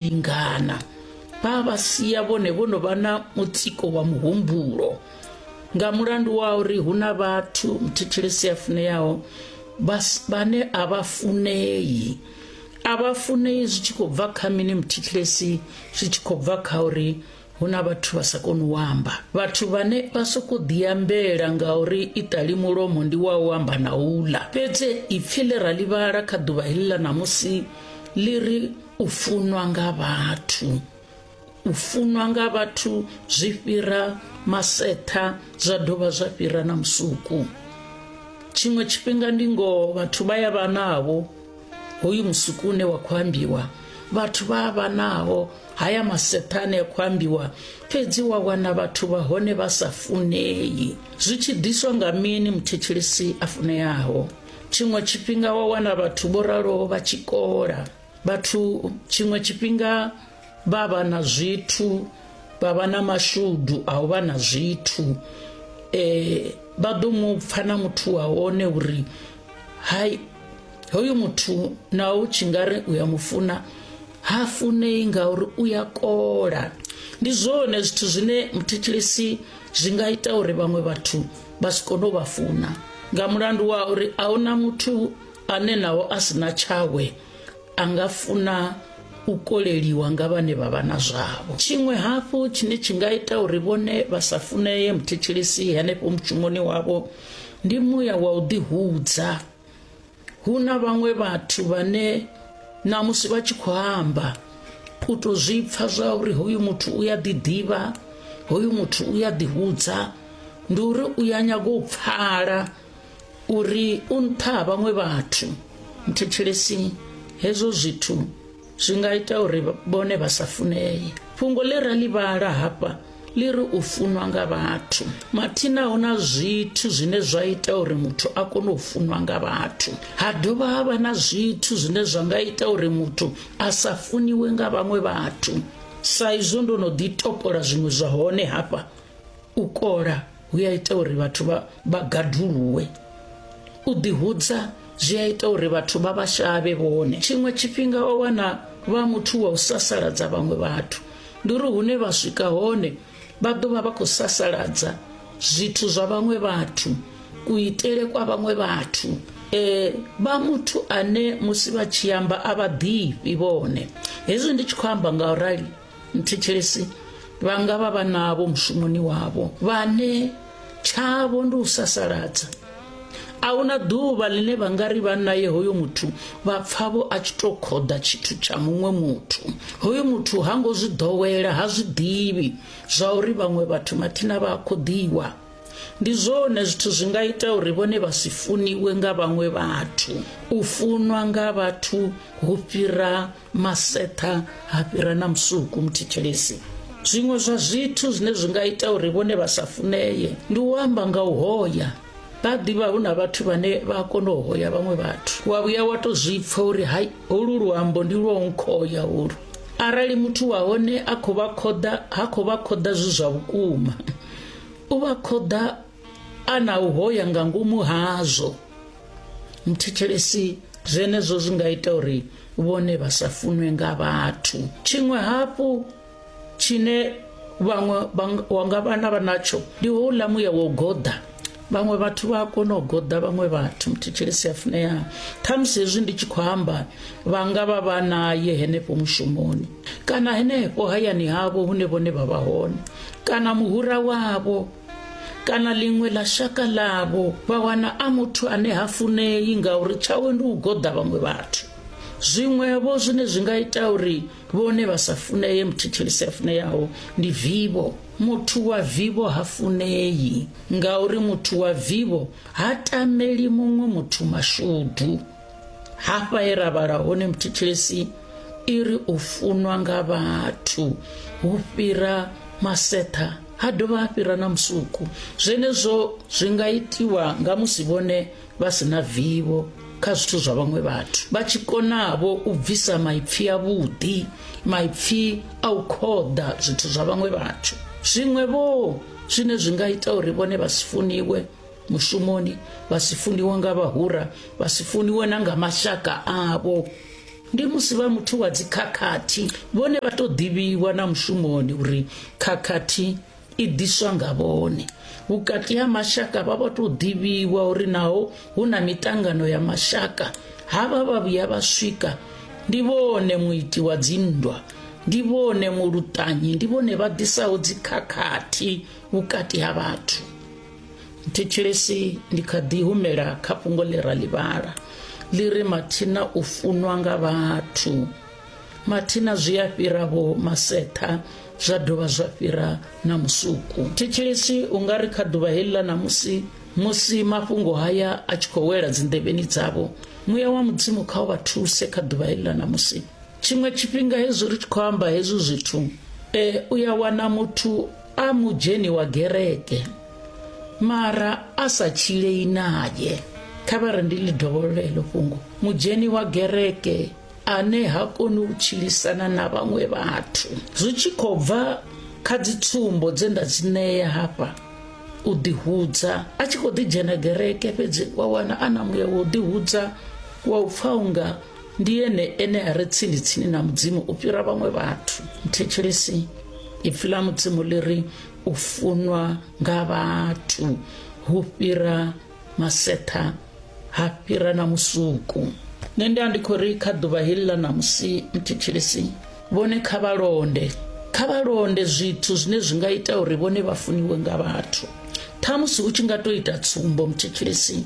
lingana vha vha sia vhone vho no vha na mutsiko wa muhumbulo nga mulandu wa uri hu na vhathu mthetshelesi a funeaho vhane a vha funei a vha funei zwi tshi khou bva kha mini mthetshelesi zwi tshi khou bva kha uri hu na vhathu vha sa koni u amba vhathu vhane vha sokou ḓiambela ngauri iṱali mulomo ndi wa u amba na uḽa fhedzi ipfi ḽe ra ḽivhala kha ḓuvha heḽi ḽa ṋamusi ḽi ri u funwa nga vhathu u funwa nga vhathu zwi fhira masetha zwa dovha zwa fhira na musuku tshiṅwe tshifhinga ndi ngoho vhathu vha ya vha navho hoyu musuku une wa khou ambiwa vhathu vha a vha naho haya masethane a khou ambiwa fhedzi wa wana vhathu vha hone vha sa funei zwi tshi ḓiswa nga mini muthetshelesi a funeaho tshiṅwe tshifhinga wa wana vhathu vho raloho vha tshi kola vhathu tshiṅwe tshifhinga vha vha na zwithu vha vha na mashudu a u vha na zwithu um vha ḓo mu pfa na muthu wa hone uri hai hoyu muthu na u tshi nga ri u ya mufuna ha funei ngauri u ya kola ndi zwone zwithu zwine muthetshelesi zwi nga ita uri vhaṅwe vhathu vha si kone u vha funa nga mulandu wa uri a huna muthu ane naho a si na tshawe a nga funa u koleliwa nga vhane vha vha na zwavho tshiṅwe hafhu tshine tshi nga ita uri vhone vha sa funeye muthetshelesi henefho mushumoni wavho ndi muya wa u ḓihudza hu na vhaṅwe vhathu vhane na musi vha tshi khou amba u to zwi pfa zwa uri hoyu muthu u ya ḓiḓivha hoyu muthu u ya ḓihudza ndi uri u ya nyaga u pfala uri u nṱha ha vhaṅwe vhathu muthetshelesi hezwo zwithu zwi nga ita uri vhone vha sa funee fhungo ḽe ra ḽi vhala hafha ḽi ri u funwa nga vhathu mathina hu na zwithu zwine zwa ita uri muthu a kone u funwa nga vhathu ha dovha ha vha na zwithu zwine zwa nga ita uri muthu a sa funiwe nga vhaṅwe vhathu sa izwo ndo no ḓi topola zwiṅwe zwa hone hafha u kola hu ya ita uri vhathu vha vha gaduluwe u ḓihudza zwi a ita uri vhathu vha vha shavhe vhone tshiṅwe tshifhinga o wana vha muthu wa u sasaladza vhaṅwe vhathu ndi uri hune vha swika hone vha ḓo vha vha khou sasaladza zwithu zwa vhaṅwe vhathu kuitele kwa vhaṅwe vhathu eh vha muthu ane musi vha tshi amba a vha ḓifhi vhone hezwi ndi tshi khou amba nga u rali mthetshelesi vha nga vha vha navho mushumoni wavho vhane tshavho ndi u sasaladza a hu na ḓuvha ḽine vha nga ri vha naye hoyo muthu vha pfavho a tshi tou khoḓa tshithu tsha muṅwe muthu hoyo muthu ha ngo zwi ḓowela ha zwi ḓivhi zwa uri vhaṅwe vhathu mathina vha a khoḓiwa ndi zwone zwithu zwi nga ita uri vhone vha si funiwe nga vhaṅwe vhathu u funwa nga vhathu hu fhira maseṱha ha fhira na musuku muthetshelesi zwiṅwe zwa zwithu zwine zwi nga ita uri vhone vha sa funeye ndi u amba nga u hoya vha ḓivha hu na vhathu vhane vha a kona u hoya vhaṅwe vhathu wa vhuya wa to zwi pfa uri hai holu luambo ndi lwa u nkhoya holu arali muthu wa hone a khou vha khoḓa ha khou vha khoḓa zwi zwa vhukuma u vha khoḓa a na u hoya nga ngomu hazwo muthetshelesi zwenezwo zwi nga ita uri vhone vha sa funwe nga vhathu tshiṅwe hafhu tshine vhaṅwe wa nga vhana vha natsho ndi houḽa muya wo goḓa vhaṅwe vhathu vha a kona u goḓa vhaṅwe vhathu muthetshelesi a funea khamusi hezwi ndi tshi khou amba vha nga vha vha naye henefho mushumoni kana henefho hayani havho hune vhone vha vha hone kana muhura wavho kana ḽiṅwe ḽa shaka ḽavho vha wana a muthu ane ha funei ngauri tshawe ndi u goḓa vhaṅwe vhathu zwiṅwevho zwine zwi nga ita uri vhone vha sa funeye muthetshelisi a funeyaho ndi vivho muthu wa vivho ha funei ngauri muthu wa vivho ha tameli muṅwe muthu mashudu hafha he ra vhala hone muthetshelesi i ri u funwa nga vhathu hu fhira maseṱha ha dovha ha fhira na musuku zwenezwo zwi nga itiwa nga musi vhone vha si na vivho kha zwithu zwa vhaṅwe vhathu vha tshi konavho u bvisa maipfi avhuḓi maipfi a u khoḓa zwithu zwa vhaṅwe vhathu zwiṅwe vho zwine zwi nga ita uri vhone vha si funiwe mushumoni vha si funiwe nga vhahura vha si funiwe na nga mashaka avho ndi musi vha muthu wa dzikhakhathi vhone vha tou ḓivhiwa na mushumoni uri khakhathi i ḓiswa nga vhone vhukati ha mashaka vha vha tou ḓivhiwa uri naho hu na mitangano ya mashaka havha vha vhuya vha swika ndi vhone muiti wa dzinndwa ndi vhone muluṱanyi ndi vhone vha ḓisaho dzikhakhathi vhukati ha vhathu thetshelesi ndi kha ḓi humela kha fhungo ḽi ra ḽivhala ḽi ri mathina u funwa nga vhathu mathina zwi a fhira vho masetha zwa dovha zwa fhira na musuku thetshelesi u nga ri kha ḓuvha heḽi ḽa ṋamusi musi mafhungo haya a tshi khou wela dzinḓevheni dzavho muya wa mudzimu kha u vha thuse kha ḓuvha heḽi ḽa ṋamusi tshiṅwe tshifhinga hezwi ri tshi khou amba hezwi zwithu um u ya wana muthu a mudzheni wa gereke mara a sa tshilei naye kha vha ri ndi ḽi dovholola heḽo fhungo mudzheni wa gereke ane ha koni u tshilisana na vhaṅwe vhathu zwi tshi khou bva kha dzitsumbo dze nda dzi ṋea hafha u ḓihudza a tshi khou ḓidzhena gereke fhedzi wa wana a na muya wa u ḓihudza wa u pfa unga ndi ene ene a re tsini tsini na mudzimu u fhira vhaṅwe vhathu mthetshelesi ipfi ḽa mudzimu ḽi ri u funwa nga vhathu hu fhira masetha ha fhira na musuku nṋe ndi a ndi khou ri kha ḓuvha heḽi ḽa ṋamusi mthetshelesi vhone kha vha londe kha vha londe zwithu zwine zwi nga ita uri vhone vha funiwe nga vhathu ṱhamusi u tshi nga to ita tsumbo mthetshelesi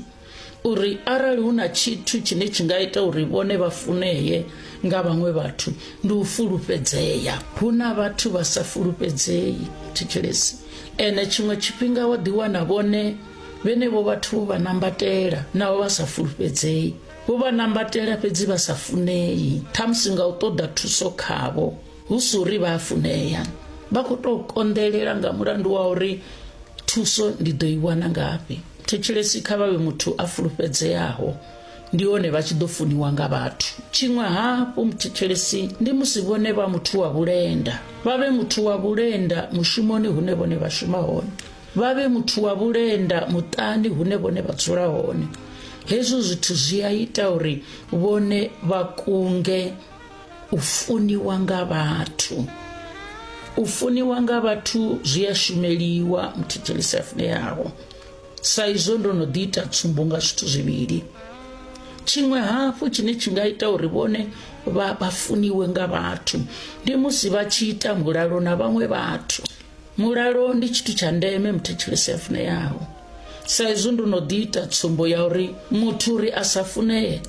uri arali hu na tshithu tshine tshi nga ita uri vhone vha funee nga vhaṅwe vhathu ndi u fulufhedzea hu na vhathu vha sa fulufhedzei thetshelesi ene tshiṅwe tshifhinga wa ḓiwana vhone vhenevho vhathu vho vha nambatela navho vha sa fulufhedzei vho vha nambatela fhedzi vha sa funei ṱhamusi nga u ṱoḓa thuso khavho hu si uri vha a funea vha khou tou konḓelela nga mulandu wa uri thuso ndi ḓo i wana ngafhi Thetshelesi kha vha vhe muthu a fulufhedzeaho, ndi hone vha tshi ḓo funiwa nga vhathu. Tshiṅwe hafhu, muthetshelesi ndi musi vhone vha muthu wa vhulenda, vha vhe muthu wa vhulenda mushumoni hune vhone vha shuma hone, vha vhe muthu wa vhulenda muṱani hune vhone vha dzula hone. Hezwo zwithu zwi a ita uri vhone vha kunge u funiwa nga vhathu u funiwa nga vhathu zwi a shumeliwa muthetshelisi a funeaho sa izwo ndo no ḓi ita tsumbo nga zwithu zwivhili tshiṅwe hafhu tshine tshi nga ita uri vhone vha vha funiwe nga vhathu ndi musi vha tshi ita mulalo na vhaṅwe vhathu mulalo ndi tshithu tsha ndeme muthetshelesi a funeaho sa izwi ndo no ḓi ita tsumbo ya uri muthu uri a sa funee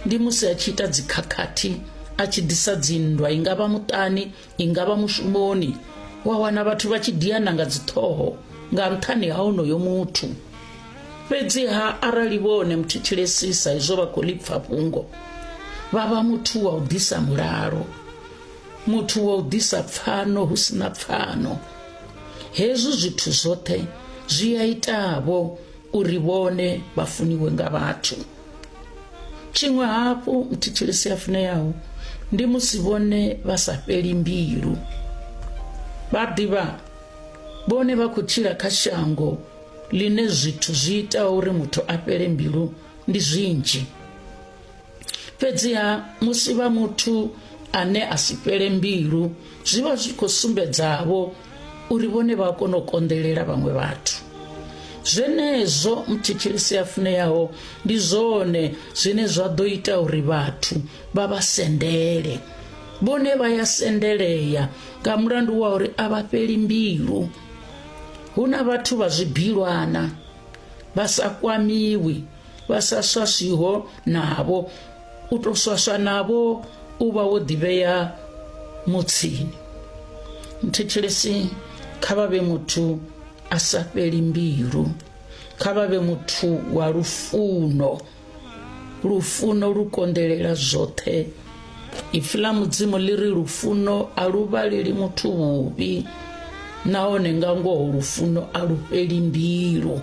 ndi musi a tshi ita dzikhakhathi a tshi ḓisa dzinndwa i nga vha muṱani i nga vha mushumoni wa wana vhathu vha tshi diana nga dziṱhoho nga nṱhani ha onoyo muthu fhedziha arali vhone muthu tshilesisa izwo vha khou lipfa fhungo vha vha muthu wa u ḓisa mulalo muthu wa u ḓisa pfano hu si na pfano hezwi zwithu zwoṱhe zwi a itavho uri vhone vha funiwe nga vhathu tshiṅwe hafhu muthitshilisi a funeyaho ndi musi vhone vha sa fheli mbilu vha ḓivha vhone vha khou tshila kha shango ḽine zwithu zwi ita uri muthu a fhele mbilu ndi zwinzhi fhedziha musi vha muthu ane a si fhele mbilu zwi vha zwi khou sumbedzavho uri vhone vha kona u konḓelela vhaṅwe vhathu zwenezwo muthetshelisi a funeaho ndi zwone zwine zwa ḓo ita uri vhathu vha vha sendele vhone vha ya sendelea nga mulandu wa uri a vha fheli mbilu hu na vhathu vha zwibilwana vha sa kwamiwi vha sa swaswiho navho u tou swaswa navho u vha wo ḓivhea mutsini muthetshelesi kha vha vhe muthu a sa fheli mbilu kha vha vhe muthu wa lufuno lufuno lu konḓelela zwoṱhe ipfi ḽa mudzimu ḽi ri lufuno a lu vhaleli muthu vhuvhi nahone nga ngoho lufuno a lu fheli mbilu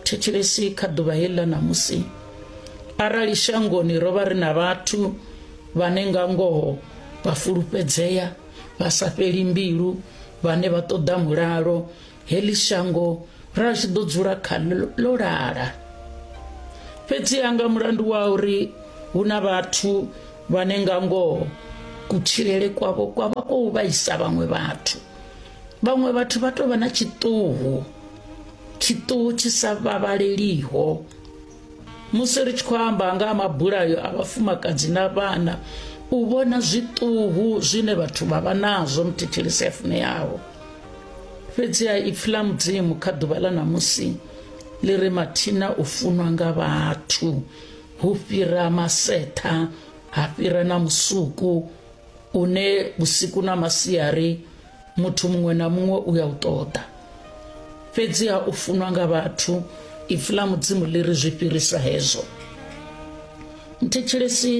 thetshelesi kha ḓuvha heḽi ḽa ṋamusi arali shangoni ro vha ri na vhathu vhane nga ngoho vha fulufhedzea vha sa fheli mbilu vhane vha ṱoḓa mulalo heḽi shango ra tshi ḓo dzula kha ḽo lala fhedziha nga mulandu wa uri hu na vhathu vhane nga ngoho kutshilele kwavho kwa vha kou vhaisa vhaṅwe vhathu vhaṅwe vhathu vha tou vha na tshiṱuhu tshiṱuhu tshi sa vhavhaleliho musi ri tshi khou amba nga ha mabulayo a vhafumakadzi na vhana u vhona zwiṱuhu zwine vhathu vha vha nazwo muthetshelisi a funeaho fhedziha ipfi ḽa mudzimu kha ḓuvha ḽa ṋamusi ḽi ri mathina u funwa nga vhathu hu fhira masetha ha fhira na musuku une vhusiku na masiari muthu muṅwe na muṅwe u ya u ṱoḓa fhedziha u funwa nga vhathu ipfi ḽa mudzimu ḽi ri zwi fhirisa hezwo mthetshelesi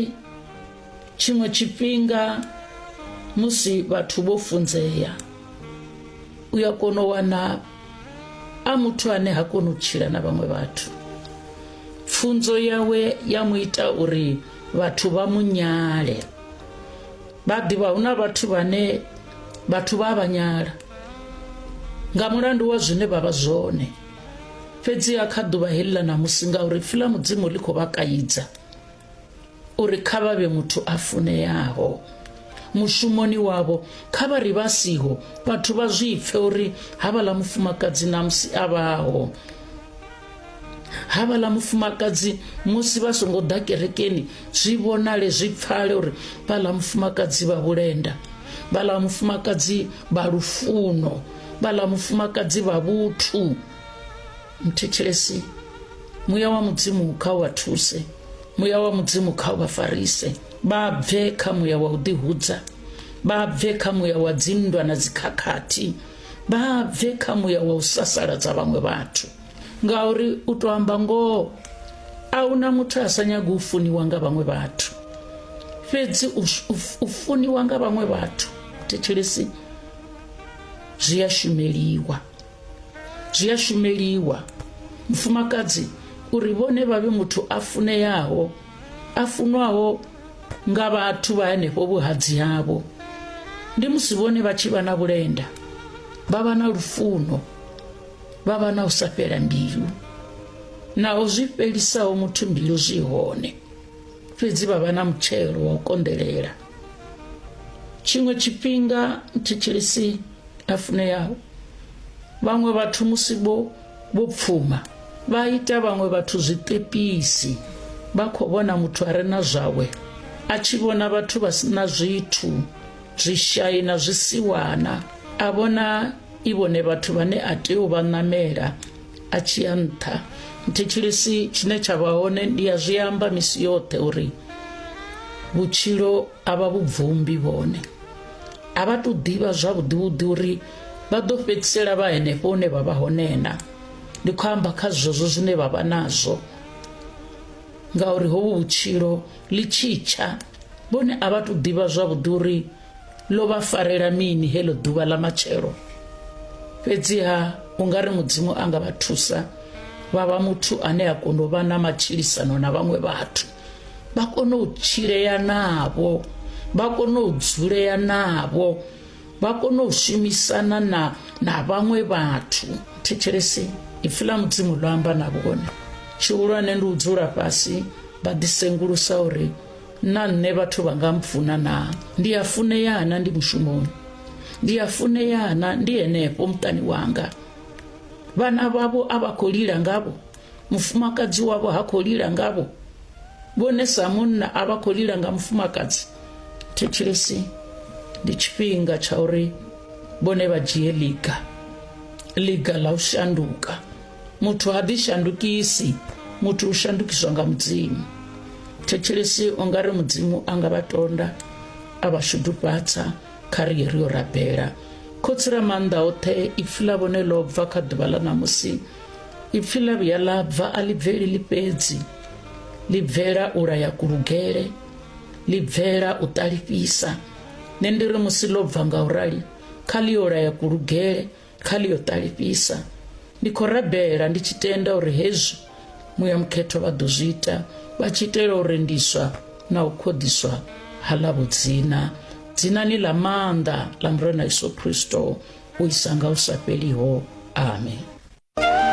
tshiṅwe tshifhinga musi vhathu vho funzea u ya kona u wana a muthu ane ha koni u tshila na vhaṅwe vhathu pfunzo yawe ya mu ita uri vhathu vha mu nyale vha ḓivha hu na vhathu vhane vhathu vha vha nyala nga mulandu wa zwine vha vha zwone fhedziha kha ḓuvha heḽi ḽa ṋamusi ngauri pfi ḽa mudzimu ḽi khou vha kaidza uri kha vha vhe muthu a funeaho mushumoni wavho kha vha ri vha siho vhathu vha zwi pfe uri havhaḽa mufumakadzi ṋamusi a vhaho havhala mufumakadzi musi vha songo ḓa kerekeni zwi vhonale zwi pfale uri vhala mufumakadzi vha vhulenda vhala mufumakadzi vha lufuno vhala mufumakadzi vha vhuthu mthetshelesi muya wa mudzimu kha wa thuse muya wa mudzimu kha vha farise vha bve kha muya wa u ḓihudza vha bve kha muya wa dzinndwa na dzikhakhathi vha bve kha muya wa u sasaladza vhaṅwe vhathu ngauri u to amba ngoho a huna muthu a sa nyaga u funiwa nga vhaṅwe vhathu fhedzi u funiwa nga vhaṅwe vhathu thetshelesi zwi a shumeliwa zwi a shumeliwa mufumakadzi uri vhone vha vhe muthu a funeaho a funwaho nga vhathu vha henefho vhuhadzi havho ndi musi vhone vha tshi vha na vhulenda vha vha na lufuno vha vha na u sa fhela mbilu naho zwi fhelisaho muthu mbilu zwi hone fhedzi vha vha na mutshelo wa u konḓelela tshiṅwe tshifhinga thitshilisi a funeyaho vhaṅwe vhathu musi vho vho pfuma vha ita vhaṅwe vhathu zwiṱepisi vha khou vhona muthu a re na zwawe a tshi vhona vhathu vha si na zwithu zwishai na zwisiwana a vhona i vhone vhathu vhane a tea u vha ṋamela a tshi ya nṱha nthetshelesi tshine tsha vha hone ndi ya zwi amba misi yoṱhe uri vhutshilo a vha vhubvumbi vhone a vha tou ḓivha zwavhuḓi vhuḓi uri Vha ḓo fhedzisela vha henefho hune vha vha hone na ndi khou amba kha zwezwo zwine vha vha nazwo ngauri hovhu vhutshilo ḽi tshitsha vhone a vha tou ḓivha zwavhuḓi uri ḽo vha farela mini heḽo ḓuvha ḽa matshelo fhedziha u nga ri mudzimu a nga vha thusa vha vha muthu ane a kona u vha na matshilisano na vhaṅwe vhathu vha kone u tshilea navho vha kone u dzulea navho vha kone u shumisana na na vhaṅwe vhathu thetshelesi ipfi ḽa mudzimu ḽo amba na vhone tshihulwane ndi u dzula fhasi vha ḓisengulusa uri na nṋe vhathu vha nga mpfuna na ndi a funea na ndi mushumoni ndi a funea na ndi henefho muṱani wanga vhana vhavho a vha khou lila ngavho mufumakadzi wavho ha khou lila ngavho vhone sa munna a vha khou lila nga mufumakadzi thetshelesi ndi tshifhinga tsha uri vhone vha dzhie liga liga ḽa u shanduka muthu ha ḓi shandukisi muthu u shandukiswa nga mudzimu thetshelesi u nga ri mudzimu a nga vha tonda a vha shudufhatsa kha ri ye ri yo rabela khotsi ra maanḓa oṱhe ipfi ḽa vhone ḽo bva kha ḓuvha ḽa ṋamusi ipfi ḽa vhuya ḽa bva a ḽi bveli ḽi fhedzi ḽi bvela u laya kulugele ḽi bvela u ṱalifhisa nṋe ndi ri musi ḽo bva nga u rali kha ḽi yo laya kulugele kha ḽi yo ṱalifhisa ndi khou rabela ndi tshi tenda uri hezwi muya mukhetho vha ḓo zwi ita vha tshi itela u rendiswa na u khoḓiswa ha ḽa vhudzina dzinani ḽa maanḓa ḽa murena yesu kristo u isa nga u sa fheliho amen